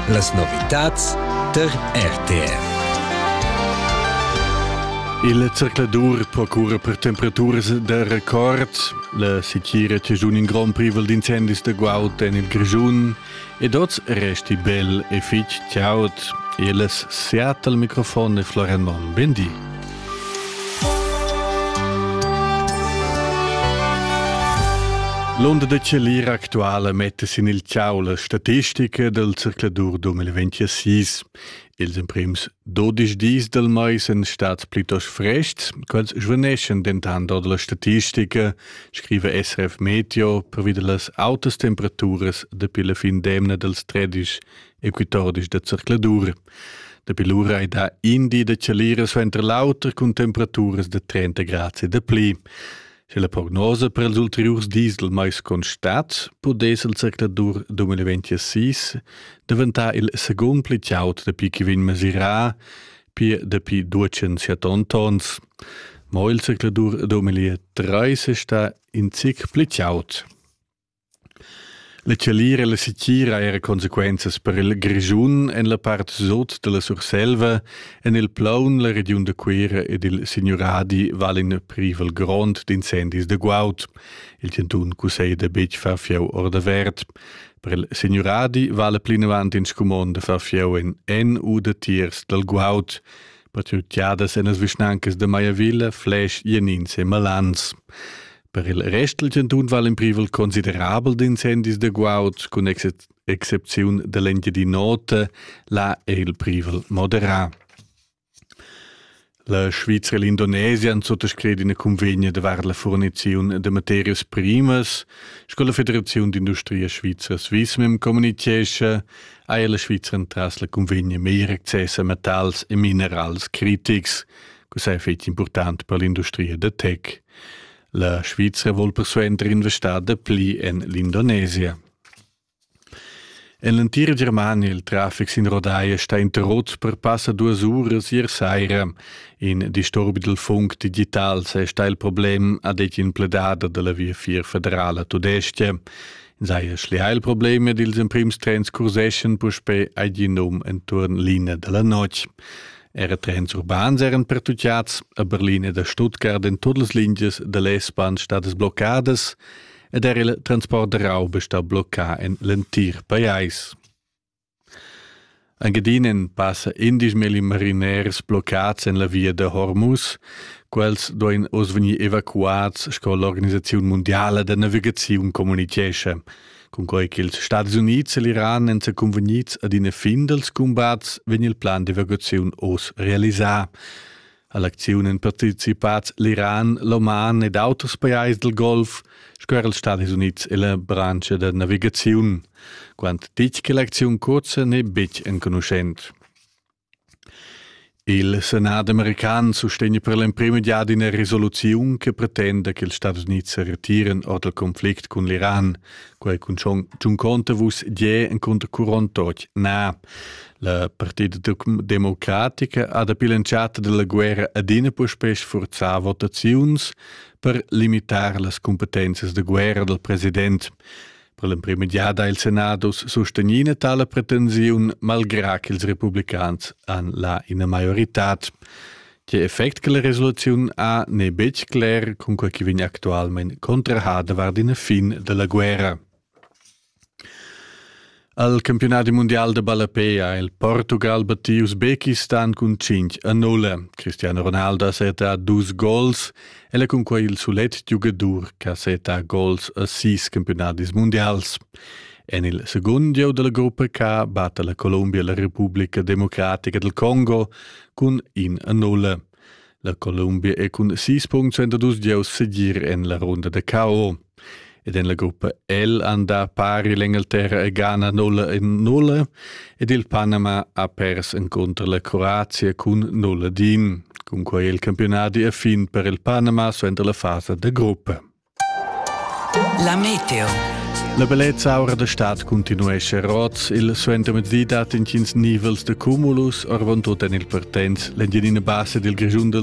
Las novitads tar RTV. Il zercladur procura per temperaturas da record. La setgira tegiun in grond privel d'incendis da guaud en il Grischun. Ed oz resti bel e fitg chaud. Il Seattle mikrofon e Florian Monn. Ben di. L'onda da Celir actuala metta sin il ciau la statistica dal circladur 2026. Ils emprims 12 dis del mais sind stads plitost frest, quels svaneschan dentant ord la statistica, scrive SRF Meteo, pervi da las autas temperaturas dapi la fin d'emna dels 13 e quitordisch da zercladur. Dapi lura ei da in di da chalira suenter l'auter cun temperaturas da 30 grad e da pli. Sche la prognosa per els ulteriurs dis del mais constat, pudess il zercladur 2026 daventar il secund pli chaud dapi che vegn mesirà pir dapi 207 tons. Ma il zercladur 2030 sta in zic pli chaud. La tschalira e la setgira era consequenzas per il Grischun en la part sut dalla Surselva, en il plaun la regiun da Cuira ed il signuradi val in privel grond d'incendis da guaud. Il chantun cusseglia betg far fieu ordavert. Per il signuradi vala plinavant in scumond da far fieu en en u da tiers dal guaud. Patrugliadas en las vischnancas da Maiavilla, Fläsch, Jenins e Malans. Per il rest dal chantun vala in privel considerabel d'incendis da guaud, cun excepziun da l'Engiadin'Ota, là è il privel moderà. La Svizra e l'Indonesia han suttascrit ina convegna davart la forniziun de materias primas. Sco la Federaziun d'Industria Svizra Swismem communichescha, haja la Svizra entras la convegna meglier access a metals e minerals critics, cosa è fetg important per l'industria da tech. La Svizra vul persuenter investar dapli en l'Indonesia. En l'entira Germania il traffic sin rodaia sta interrotts per passa duas uras ier saira. In disturbi dal funk digital se sta il problem, ha detg in pledada dalla via vier federala tudestia. Sei schlia il problem ed ils emprims trens curseschan puspé ai di num enturn linea della notg. Era trens urbans eran pertutgads a Berlin ed a Stuttgart en tut las lingias da l'S-Bahn stadas bloccadas ed era il transport da rauba sta bloccà en l'entir pajais. Anche dinen passa indismeli mariners bloccats en la via da Hormuz. Quels duein oz vegnir evacuats sco l'Organisaziun mondiala da navigaziun communitgescha. Cunquei ch'ils Stadis Unids e l'Iran èn secunvegnids ad ina fin dals cumbats, vegn il plan d'evacuaziun oz realisà. All'acziun èn participads l'Iran, l'Oman ed auters pajais dal Golf sco er ils Stadis Unids e la branscha da navigaziun. Quant ditg che l'acziun cursa n'è betg enconuschent. Il senat american sustegna per l'emprema giada ina resoluziun che pretenda che ils Stadis Unids sa retiran ord il conflict cun l'Iran. Quei cun John Contavus gie encunter Curon Toch na. La partida democratica ha dapi l'entschatta della guerra adina puspei sforzà votaziuns per limitar las competences de guerra del president. Per l'emprima giada ha il Senatus sustegnì ina tala pretensiun, malgrà ch'ils republicans han là ina maioritad. Tge effect che la resoluziun ha n'è betg cler, cunquai che vegn actualmain contrahada vart ina fin dalla guerra. Al campionat mondial de ballapé ha il Portugal battiu Usbekistan cun 5 a 0. Cristiano Ronaldo ha acertà dus gols El è cunquai il sulet giugadur che seta gols a sis campiunadis mundials. En il secund gieu della gruppa K batte la Colombia la Repubblica Democratica del Congo cun in a nulla. La Colombia è cun 6 punct 32 gieus segir en la runda da KO. ed en la gruppa L han dà pari l'Engalterra e Ghana nulla en nulla ed il Panama ha pers encunter la Croazia cun nulla din. Cunquai è il campionadi a fin per il Panama suenter la fasa da gruppa. La Meteo La bellezza aura da stad continuesce roz, il suentermezdi dat intgins nivels da cumulus, orvon tut en il Partenz, l'Engiadina Bassa del Grischun del